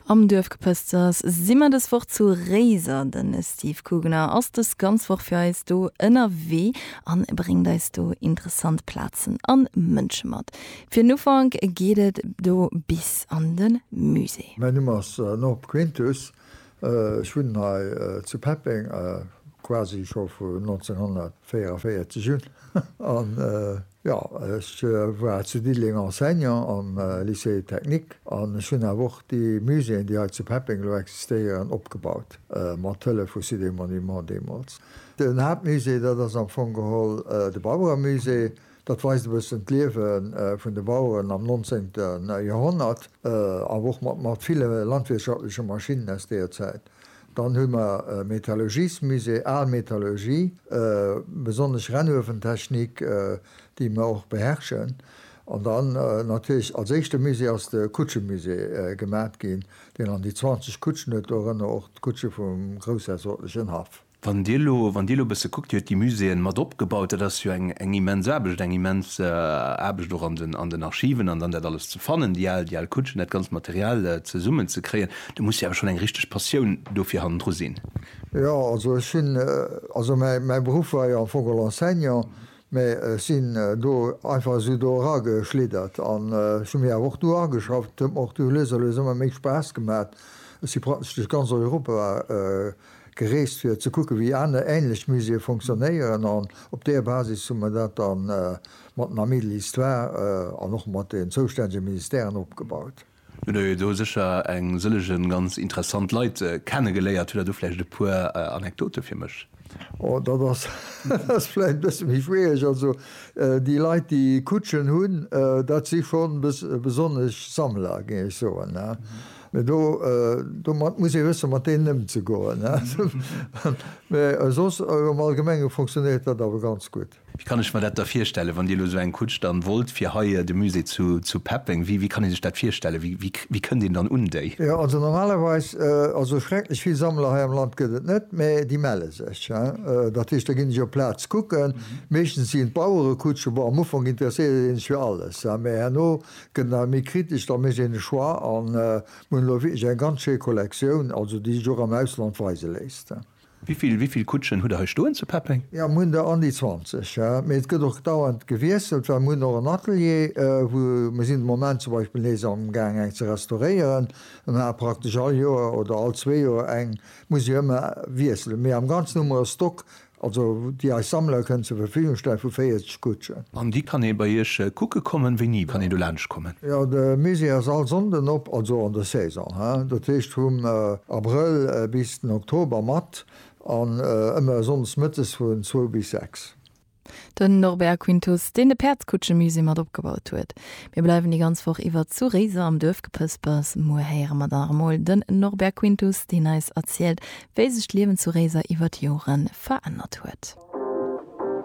Am Duerfgepësters si mer dës Woch zu Réiser. Den Steve Kugener ass dës ganz Woch fir eis do ënnerwee a bréngt eis do interessant Plazen a Mënsche mat. Fir den Ufank geet et do bis an de Musée. Mäin Numm ass Norb Quintus, ech wunnen hei zu Peppeng quasi scho vu 1944 un. Jo, ech war zu Diddeleng Enseignant am Lycée technique an ech hunn awer och déi Muséeën, déi hei zu Peppeng elo existéieren, opgebaut, mat Hëllef vu Cité Monuments deemools. Den Haaptmusée, dat ass am Fong geholl de Baueremusée. Dat weist e bëssen d'Liewe vun de Baueren am nonzéngte Joerhonnert, awer och mat ville landwirtschaftleche Maschinnen aus deeër Zäit. Dann hu mer e Metallurgiesmusée, al Metallurgie, besonnesch Rennuewentechnik, déi mer och beherrschen. An dann natierlech als éischte Musée ass de Kutschemusée gemat ginn, deen an déi 20 Kutschen huet, dorënner och d'Kutsche vum groussherzoglegen Haff. Wann Dir elo, wann Dir elo e bësse kuckt, Dir hutt déi Muséeën mat opgebaut, dat ass jo eng immens Aarbecht, eng immens Aarbecht och an den Archiven an dann dat alles ze fannen, déi al, déi al Kutschen, dat ganzt Material zesummenzekréien. Do muss jo awer schonn eng richteg Passioun dofir hannendru sinn. Jo, also ech sinn, also mäi, mäi Beruff war jo am Fong geholl Enseignant, mä ech sinn do einfach esou do erageschliddert an ech hu mir awer och do ageschafft. Et huet mer och du lues a lues ëmmer méi Spaass gemat. Ech si praktesch duerch ganz Europa gereest, fir ze kucke wéi aner änlech Muséeë fonctionnéieren an op där Basis hu mer dat da mat den Amis de l'Histoire an och mat den zoustännege Ministèren opgebaut. Hutt der jo do sécher eng sëllege ganz interessant Leit kennegeléiert. Hutt der do vläicht e puer Anekdote fir mech? Oh, dat ass, dat ass vläicht e bësse méi schwiereg. Also déi Leit, déi Kutschen hunn, dat si schonn besonnesch Sammler, géing ech soen. Mee do, domat muss ee wësse mat deenen ëmzegoen. Mee soss am Allgemenge funktionéiert dat awer ganz gutt. Wéi kann ech mer dat da virstellen, wann Dir elo esou eng Kutsch dann wollt fir hei de Musée zu peppen? Wéi kann ee sech dat virstellen? Wéi kënnt een dann un déi? Jo, also normalerweis, also esou schrecklech vill Sammler hei am Land gëtt et net, mä déi melle sech. Dat heescht, da ginn ech op d'Plaz kucken. Meeschtens sinn et Bauerekutschen. Bon, am Ufank interesséiert ee sech fir alles, mä herno gëtt et nach méi kritesch, da mécht een e Choix. A mir hunn elo wierklech eng ganz schéi Kollektioun, also déi sech och am Ausland weise léisst. Wivill, wivill Kutschen hutt der hei stoen zu Peppeng? Jo, mir hunn der an déi 20, mee et gëtt och dauernd gewiesselt, well mir hunn och en Atelier, wou mir sinn de Moment zum Beispill nees amgaang eng ze restauréieren, a mir hate praktesch all Joer oder all zwee Joer eng, muss jo ëmmer wiesselen, mee am Ganzen hu mer e Stock, also déi eis Sammler kënnen zur Verfügung stellen, vu 40. D'Kutsche. An déi kann ee bei iech kucke kommen? Wéini kann een do laanscht kommen? Jo, de Musée ass all Sonnden op, also an der Saison, he, dat heescht vum Abrëll bis den Oktober, mat an ëmmer sonndes mëttes vun zwou bis sechs. Den Norbert Quintus, deen de Päerdskutschemusée mat opgebaut huet. Mir bleiwen déi ganz Woch iwwer zu Réiser am Duerfgepëspers. Muer héiere mer dann nach emol den Norbert Quintus, deen eis erzielt, wéi sech d'Liewen zu Réiser iwwer d'Joren verännert huet.